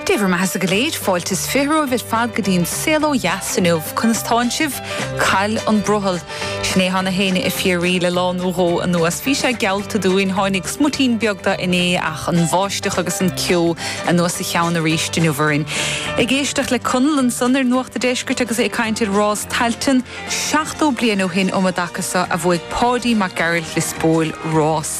Dé bhur mbeathasa go léir, fáilte is fiche romhaibh ar fad go dtí an Saol Ó Dheas inniu. Conas tánn sibh? Cá bhfuil an brothall? Sin é atáim féin ag fiafraí le lá nó dhó anuas. Bhí sé geallta dúinn, tháinig smutín beag de inné ach an bháisteach agus an ceo anuas ina cheann aríst inniu orainn. Ag éisteacht le Conall ansan ar Nuacht a' Deiscirt agus é ag caint ar Rás Tailteann, 70 bliain ó shin um a dtaca so a bhuaigh Páidí Mac Gearailt Lios Póil rás.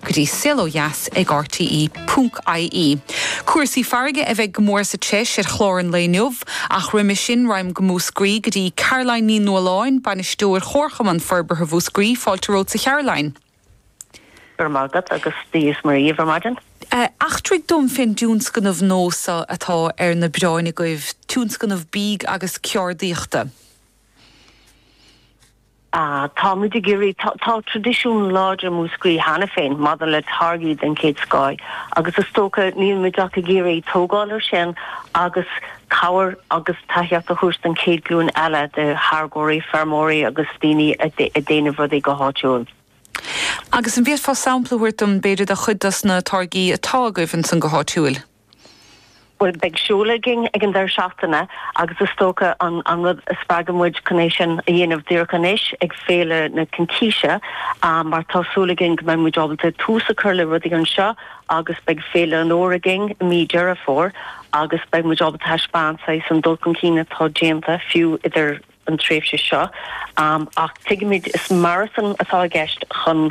go dtí Saol Ó Dheas ag RTE.ie. Cúrsaí farraige a bheidh go mór sa treis ar chlár an lae inniu, ach roimhe sin raghaimid go Múscraí go dtí Caroline Ní Nualláin, Bainisteoir Chomharchumann Forbartha Mhúscraí, Fáilte romhatsa Charoline. Go raibh maith agat agus Dia is Muire dhaoibh ar maidin. Eachtraigh dom fén dtionscnamh nua so atá ar na bioráin agaibh, tionscnamh bídh agus ceárdaíochta. Tá muid ag iarraidh, tá traidisiún láidir i Múscraí cheana féin maidir le táirgí den chéad scoth agus is dócha, níl muid ach ag iarraidh tógáil air sin agus cabhair agus tacaíocht a thabhairt don chéad ghlúin eile de tháirgeoirí, feirmeoirí agus daoine ag déanamh rudaí go háitiúil. Agus an bhféadfá sampla a thabhairt dom, b'fhéidir, de chuid dos na táirgí atá agaibh ansan go háitiúil? Bhuel, beidh seoladh againn ag an deireadh seachtaine agus is dócha an rud a spreag muid chun é sin a dhéanamh díreach anois ag Féile na Cincíse mar tá súil againn go mbeidh muid ábalta tús a chur le rudaí anseo agus beidh Féile an Fhómhair againn i mí Dheireadh Fómhair agus beidh muid ábalta a thaispeáint saghas an dul chun cinn atá déanta fiú idir an tréimhse seo ach tuigimid is marathon atá i gceist chun